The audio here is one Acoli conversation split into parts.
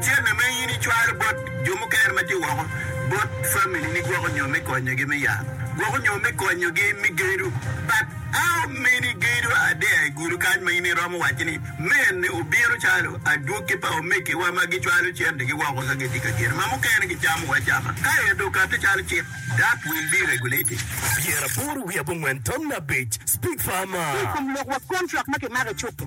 Cente ma in icwalo bot jo mukene ma tye woko bot familini gwoko nyo me konyogi me yat, gwoko nyo me konyogi me gedo. But how many gedo are there i gudi kany ma in iromo waco ni men obino calo adwogi pa omegiwa ma gicwalo centegi woko ka gitye ka gedo ma mukene gicamo acama ka ento okati calo cik that will be regulated. Pyeraboro wiye abongwen tam me abic, Speak farmer. Ki i kom lok wa, kontrak ma kimako i cuk-ki.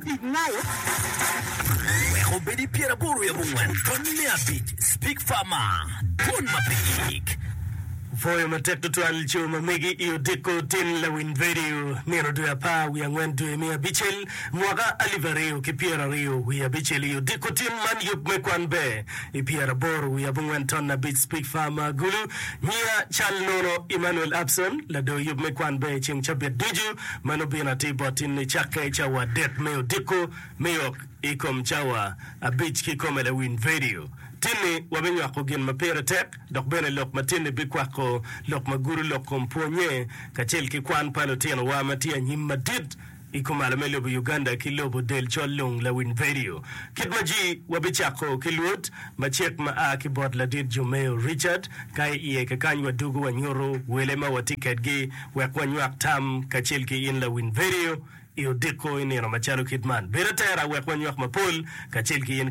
Tic Malo, Wek obed i pyeraboro i abongwen tony me abic Speak Far Ma, Dwon Mapek. Pwoyo matek tutwal co ma megi i odiko tin lawiny redio nino dwe apar wiye angwen dwe me abicel mwaka alip aryo ki pyera aryo wiye abicel i odiko tin man yub me kwan ber i pyeraboro wiye abongwen ton abic Speak Far Ma Gulu nyiya cal nono Emmanuel Abson lador yub me kwan ber ceng cabit ducu Ma nobino atir bot in ni cakke cawa adek me odiko me yok i kom cawa abic kikome lawiny vedio. Tinni wabinywako gin ma pire tek dok bene lok ma tinni bikwako lok ma gudo lok kom pwonye kacel ki kwan pa lutinowa ma tye anyim madit i kumalo me lobo Uganda ki lobo del col lung lawiny vedio kit ma ji wabicako ki luot macek ma a ki bot ladit Jomeo Richard ka i iye kakany wadugo wanyuto wele ma watye kedgi wek wanywak tam kacel ki in lawiny vedio i odiko i nino macalo kit man. Bed atera wek wanywak mapol kacel ki in.